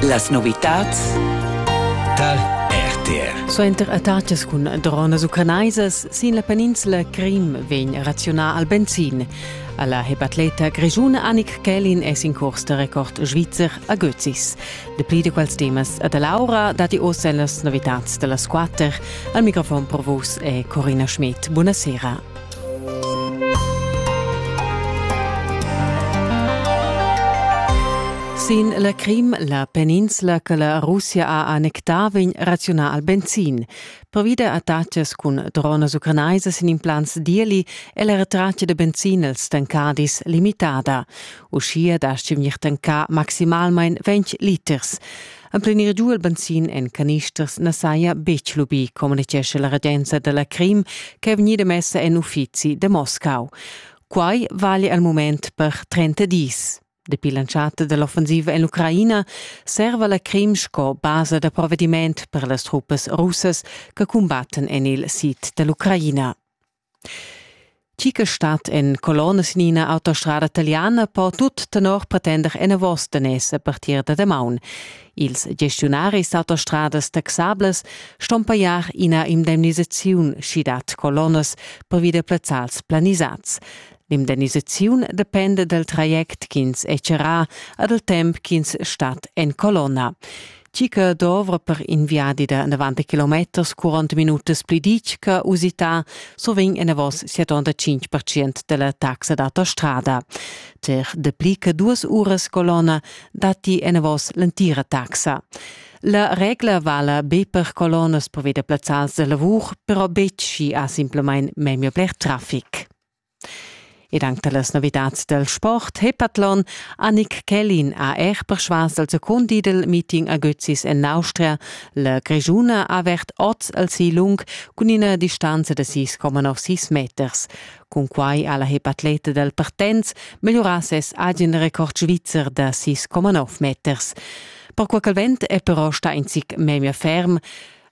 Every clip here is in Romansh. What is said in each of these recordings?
Las novitads tal RTR. Suenter attacas cun dronas ucranaisas sin la peninsula Crim vegn razionà al benzin. Alla hepatleta grischuna Annik Kellin es in curs da record svizzer a Götzis. De pli de quals temas a da Laura dati ossa las novitats da las quatter. Al microfon per vus è Corina Schmidt. Buonasera. Sin la Crim, la peninsula che la Russia ha annectà, vegn razionà al benzin. Pervida attacas cun dronas ucrainaisas sin implants d'ieli è la retratta da benzin als tancadis limitada. Uschia dastga vegnir tancà maximalmain 20 liters. Emplenir giu il benzin en canisters na saja betg lubì, communitgescha la regenza da la Crim che è vegnida messa en uffizi da Moscau. Quai vale al mument per 30 dis. Dapi l'entschatta dell'offensiva en l'Ucraina serva la Crim sco basa da provvediment per las truppas russas che cumbattan en il sid dell'Ucraina. Tgi che stat en colonna sin ina autostrada taliana po tut tenor pretender enavos daners a partir da damaun. Ils gestiunaris d'autostradas taxables ston pajar ina indemnisaziun, sch'i dat colonnas pervi da plazzals planisads. L'indemnisaziun dependa dal traject ch'ins è charrà e dal temp ch'ins stat en colonna. Tgi che dovra per in viadi da 90 km 40 minutas pli ditga usità, so vegn enavos 75% della taxa d'autostrada. Cer de pli che duas uras colonna datti enavos l'entira taxa. La regla vala be per colonnas per veder plazzals de lavur, però betg si ha simplemente memio bler traffic. Ed anche las novidades del sport Hepathlon Annick Kellin ha er persuas al secund di del meeting a Götzis en Austria. La Grigiuna ha avert oz al si lung cun ina distanza da 6,96 meters. Cun quai ha la hepatleta del Partenz melhorà ses agen record svizzer da 6,9 meters. Per quel vent è però sta in zic memia ferm.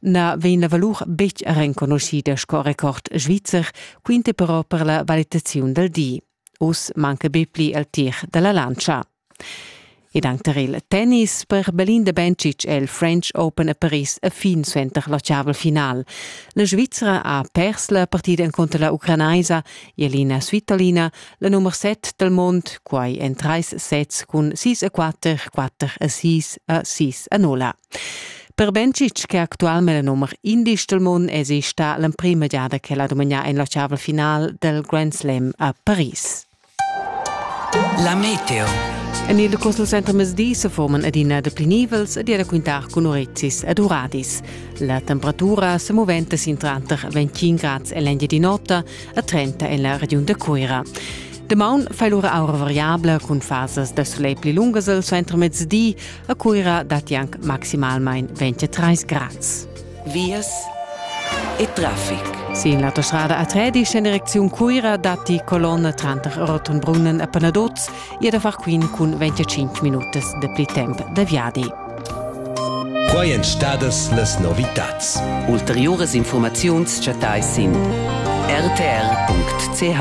na vegn la valur betg renconuschida sco record svizzer, quinte però per la valitaziun dal di. Uss manca be pli il tir da la lantscha. Ed anche il tennis per Belinda Bencic è il French Open a Paris a fin suenter la chaval final. La Svizzera ha pers la partida contro la ucranaisa Jelena Svitolina, la nummer 7 del mond, quai en trais sets cun 6 a 4, 4 a 6 a 6 a 0. Per Bencic, che actualmein el numer indisch dil mund, esi sta l'emprima giada che la dumegna en la chavel final del Grand Slam a Paris. La Meteo. En il Cosel Center Mesdi se forman adina de plinivels ed era quintar cun Orezis ed Uradis. La temperatura se moventa sin tranter 25 grads e l'endia di notte e 30 en la regiun de Cuira. Demaun fai lura aura variabla cun fasas da soleil pli lungas al center mezdi, A Cuira datti anc maximalmain 23 grads. Vias e traffic. Sin l'autostrada A3 sin direcziun Cuira datti colonna tranter Rotenbrunnen e Panaduz e da far quin cun 25 minutas de pli temp da viadi. Quai èn stadas las novitads. Ulteriuras informaziuns chattais sin rtr.ch.